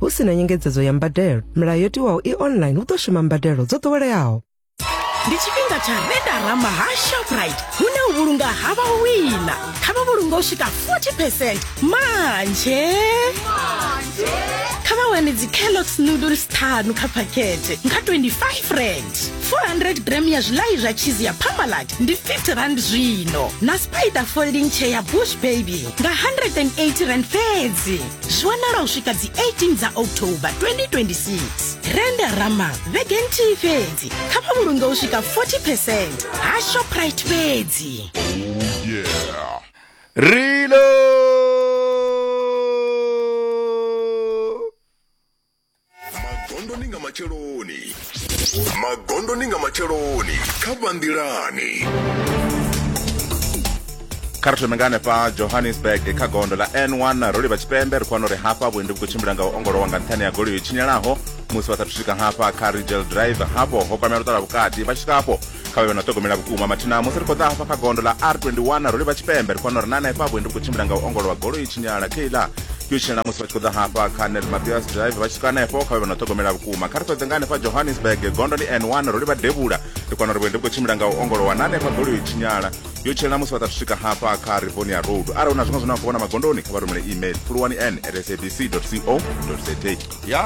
hu si na nyengedzedzo ya mbadelo milayo yo tiwaho i online hu ḓo shuma mbadelo dzo ḓoweleaho ndi tshifhinga tsha redarama ha shoprite hune u vhulunga ha vha wina kha vha vhulunga u swika 40 percent manje kha vha wane dzicalox noodles ṱhanu kha phakhethe nga 25 rand 400 gram ya zwilayi zwa cheese ya pamalat ndi 50 rand zwino na spider folding chair ya bush baby nga 180 rand fhedzi zwi wanala u swika dzi 18 dza october 2026 renda rama vhege nthihi fhedzi kha vha vhulunge u swika 40 percent ha shoprite fhedzi Reload! magondoni nga matsheloni magondoni nga matsheloni kha vhanḓilani kha ri thome nga hanefha johannesburg kha gondo ḽa n1 ro livha tshipembe ri khou wana uri hafha vhuendi vhu khou tshimbila nga u ongolowa nga nṱhani ya goloi yo tshinyalaho musi vha sathu swika hafha kha rigel drive hafho ho kwamela u ṱala vhukati vha tshi swika hafho kha vhe vha na ṱhogomela vhukuma mathina musi ri khou ḓa hafha kha gondo ḽa r21 ro livha tshipembe ri fanela uri na hanefha vhuendi vhu khou tshimbila nga u ongolowa goloi i tshinyala keiḽa yo tshinyala musi vha tshi khou ḓa hafha kha nel mabias drive vha tshi swika hanefho kha vhe vha na ṱhogomela vhukuma kha ri ṱoḓe nga hanefha johannesburg gondo ndi n1 ro livha devhula ri fanela uri vhuendi vhu khou tshimbila nga u ongolowa na hanefha goloi i tshinyala yo tshinyala musi vha ḓa swika hafha kha rivonia road arali hu na zwiṅwe zwine vha khou vhona magondoni kha vha rumele email fulwani n at sabc co za